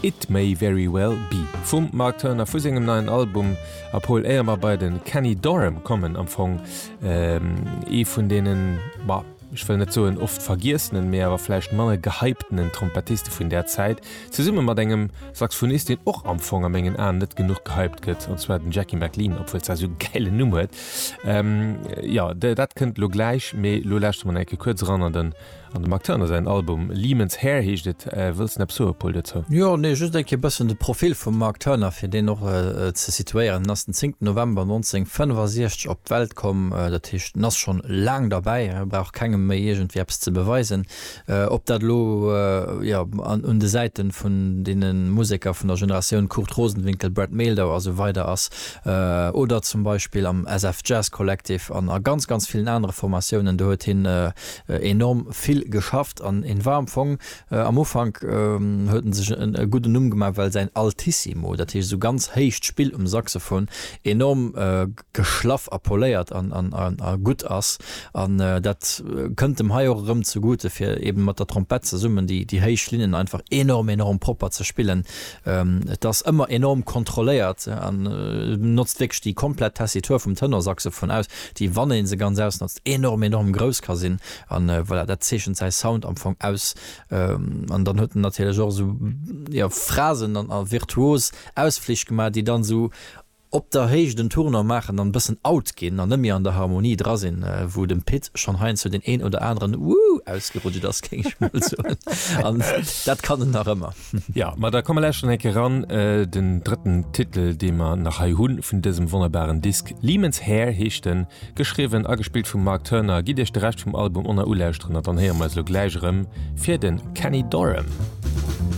It May Very Well Be vum Mark Turner vu sengem neien Album a Paul, éier mer bei de Kenny Dorham kommen, am Fong ee vun deenen, ma ech wëll net soen oft vergiessenen, mee awer vläicht manner gehyptenen Trompettiste vun där Zäit, zesumme mat engem Saxofonist, deen och am Fong a mengen Aen net genuch gehypt gëtt, an zwar den Jackie McLean, obwuel se esou e gäilen Numm huet. Jo, dat kënnt elo gläich, mee elo lauschte mer nach eng Kéier kuerz eran an den. An dem Marc Turner säin Album Lehman's Hair heescht et. Wëlls de näppes soe Paul dozou? Jo, nee, just eng Kéier e bëssen de Profil vum Marc Turner, fir deen och ze situéieren. En ass den 10 November 1965 op d'Welt komm, dat heescht en ass schonn laang derbäi, e brauch kengem méi iergendwéi eppes ze beweisen. Ob dat elo, jo, un de Säite vun deene Museker vun der Generatioun Kurt Rosenwinkel, Brad Mehldau a sou weider ass oder zum Beispill am SF Jazz Collective an a ganz, ganz villen anere Formatiounen, do huet hien Enorm vill geschafft an en war am Fong, am Ufank huet en sech e gudden Numm gemaach well säin Altissimo, dat heescht esou ganz héicht Spill um Saxophon, enorm geschlaff a poléiert a gutt ass an dat kënnt em hei och erëm zegute fir eben mat der Trompett zesummen déi héich Linnen einfach enorm enorm propper ze spillen. Et ass ëmmer enorm kontrolléiert an notzt wierklech déi komplett Tessitur vum Tenorsaxophon aus, déi wann een se ganz ausnotzt enorm enorm grouss ka sinn an voilà dat zeechent säi Sound am Fong aus an dann huet en natierlech och esou jo Phrasen an a virtuos Ausflich gemaach déi dann esou op der Héicht en Tournant maachen an e bëssen out ginn an net méi an der Harmonie dra sinn wou dem Pit schonn heiansdo deen een oder aneren Woo ausgerutscht ass géing ech mol soen an dat kann en nach ëmmer. Jo, ma da komme lauschteren eng Kéier ran, den drëtten Titel, dee mer nach hei hunn, vun dësem wonnerbaren Disk. Lehman's Hair heescht en, geschriwwen a gespillt vum Mark Turner. Gitt iech de Rescht vum Album onnert ulauschteren, an dann héiere mer eis elo gläich erëm fir de Kenny Dorham.